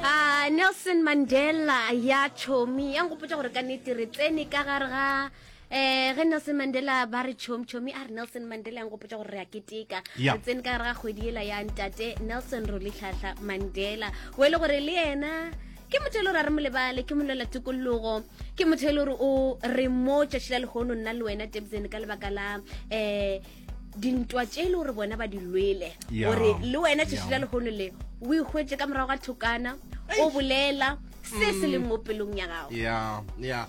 a nelson mandela ya tšhomi ya nkgopotsa gore ka nete re tsene ka gare ga eh ge nelson mandela ba re chomi chomi a re nelson mandela yang gopotsa gore re a keteka re tsene ka ra kgwedi ela ya ntate nelson rolitlhatlha mandela o e le gore le ena ke motho e le gore a re molebale ke molela tokologo ke motho e le gore o re mo tšatši la lehono nna le wena tebzene ka lebaka la um dintwa tše e le gore bona ba di lwele gore le wena tšešo la lehono le o ikgwetse ka morago ga thokana o bolela se se leng mo pelong ya gago ya ya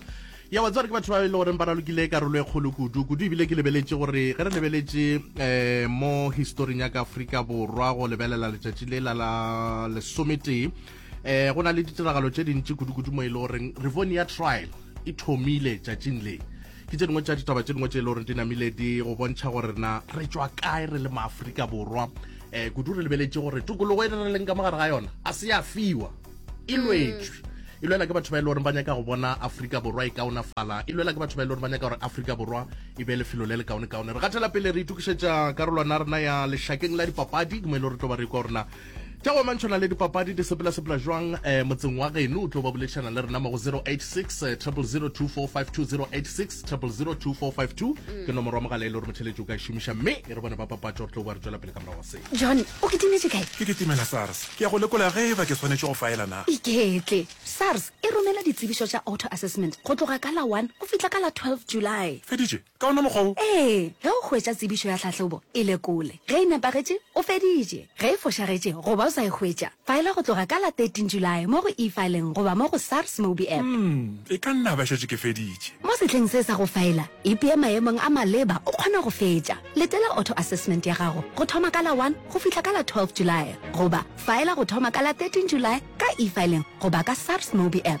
ya wa tsare ke batho ba e le goreng ba ralokile karolo e kgolo kudu kudu ebile ke lebeletse gore ge re lebeletse um mo historing ya ka aforika borwa go lebelela letšatši le la la lesometee um go na le ditiragalo tše dintši kudu-kudu mo e le goreng revonia trial e thomile tšatšing le ke tše dingwe tša ditaba tše dingwe tše e le gore di namile di go bontšha gore na re tswa kae re le maaforika borwa um eh, kudu re lebeletše gore tokologo e re leng ka mogare ga yona a se ya fiwa e mm. lwetswe e lwela ke batho ba e le goreng ba nyaka go bona aforika borwa e kaonafala e lwela ke batho ba e le goreng ba nyaka gore aforika borwa e be lefelo le le kaone kaone re gathela pele re itukišetša karolwana rena ya lešakeng la dipapadi ke mo e le gore tlo ba re kwa gorena tša go mantšho na le dipapadi di sepelasepela jwang um eh, motseng wa geno o tlo ba boledišana le rena mo go 086 002452 086 002452 ke nomoro wa mogala e le gore motšheletši o ka e šomiša mme e re bone ba papatša gore tlo ba re tšwela pele ka morago wa se john o ke timetše kae ke ke timela sars ke ya go lekola ge e ba ke tshwanetše go faela na iketle sars e romela ditsebišo tša auto assessment go tloga ka la 1 go fihla ka la 12 july feditše Ka wona mokgwa wo. Ee, ge o hwetša tsebišo ya tlhahlobo, e lekole. Ge e nepagetše, o feditše. Ge e fošagetše goba o sa e hwetša, faela go tloga ka la 13 Julae mo go E-Filing goba mo go SARS Mobi App. Umm, e ka nna ba šetše ke feditše. Mo sehleng se sa go faela, ipea maemong a maleba o kgona go fetša. Letela auto assessment ya gago go thoma ka la 1 go fihla ka la 12 Julae goba faela go thoma ka la 13 Julae ka E-Filing goba ka SARS Mobi App.